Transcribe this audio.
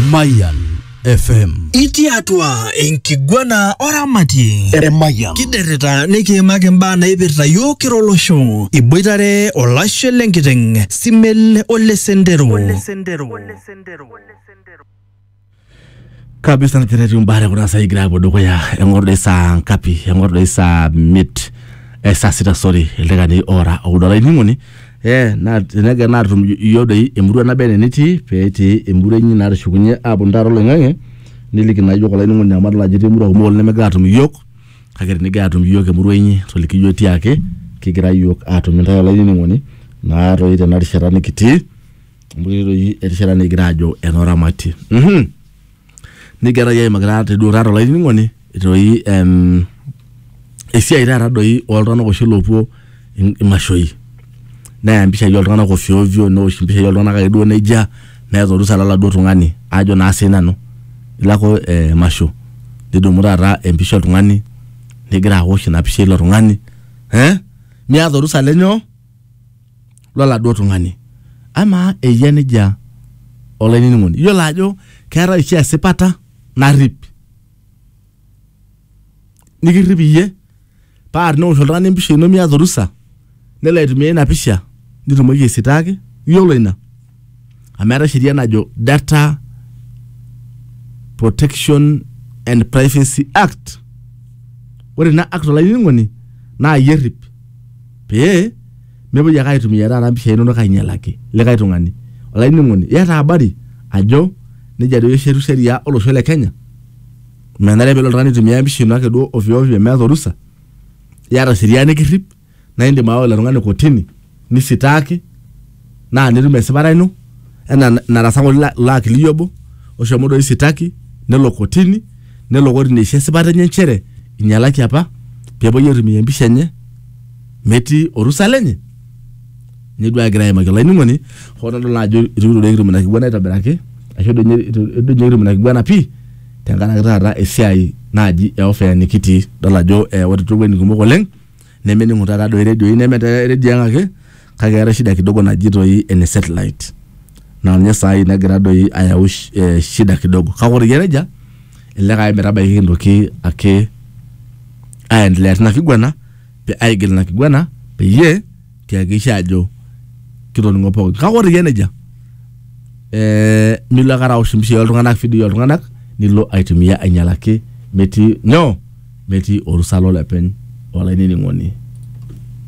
Mayan FM. Itii atua enkiguana oramatie. Eremayian. Kiderita nikiimaki imbaa naipirta yiok kira olosho. Iboitare olashe lenkiteng, Simel ole Sendero. kabisa na tenetiu imbaa tekuna saa igira apuo dukuya eng'or doi saa ngapi eng'or doi saa miet eh, saa sita sorry ildaikani oora oudo olainining'oni Ee, naa tenegel natum iyiook doi emurua naba enaa enitii pee etii emurua inyi naa tushukunye aaponu taata oloing'ang'e niliki naa iyiook olainining'oni amu adol ajo etii imurua kumok oleng' nemegira aatum iyiook kake tenigira atum iyiook emurua inyi toliki iyiook tiaake kigira iyiook aatum intae olainining'oni naa toi tena rishata nikitii amu ketii toi erishata nikigira aajo eno ramatie. nikiaraki aimakita teduo taata olainining'oni toi em, esiai taata doi oltung'anak oshi loopuo in- imashoi neya mpishai oltung'anak ofyoofyo neosh mpishai oltung'anak ake duo nejia meeta orusa loladuo tung'ani ajo naa sii nanu ilo ake eh, emasho nidumu taata empisha oltung'ani nigira awosh ina pisha eilo tung'ani eh? miata orusa lenyoo loladuo tung'ani. Amaa eyia nejia olainining'oni? Iyiolo ajo keetae oshi esipata narrip. Nikirrip iyie paa tenewosh oltung'ani empisha ino miata orusa nelo aitumia ina pisha nitumoki aisitaaki, iyiolo ina? amu eeta sheria najo data protection and privacy act ore ina act olainining'oni naa iyie errip pee mepuoi ake aitumia taata mpishai inonok ainyialaki likae tung'ani olainining'oni iyata habari ajo nejia doi eshetu sheria olosho le kenya menare pelo oltung'ani aitumia empisha ino ake duo ovyo ovyo meeta orusa iyata sheria nikirrip naa indim aawa ilo tung'ani kotini nisitaaki naa nitum esipata ino enaa narasa ng'ole ilo- ilo akili obo oshomo doi sitaki nelo kotini nelo kotini aisho esipata enye nchere inyialaki apa peepuoi aitumia empisha enye metii orusa lenye ninye duo agira aimaki olainining'oni hoo nadol naa ajo itu kitu doi kitum ina kiguana aitobiraki ashu doi ninye itu itu doi ninye kitum ina kiguana pii tenkaraki taata esiai naaji e ofea nikitii idol ajo eh, ore towueitin kumok oleng. nemening'u taata doi redioi neme te redio ang ake kake eetae shida kidogo naji toi ene satellite naa ninye saai nagira doi ayau sh- eh, shida kidogo kake ore eyia nejia elelek ake metabaiki kintoki ake aendelea tina kiguana pe aigil ina kiguana peyie tiakikisha ajo kitoning'o pookin kake ore iyie nejia eh, milo ake araosh impishai oltung'anak fidoi oltung'anak nilo aitumia ainyialaki metii nyoo metii orusa lolepeny olainining'oni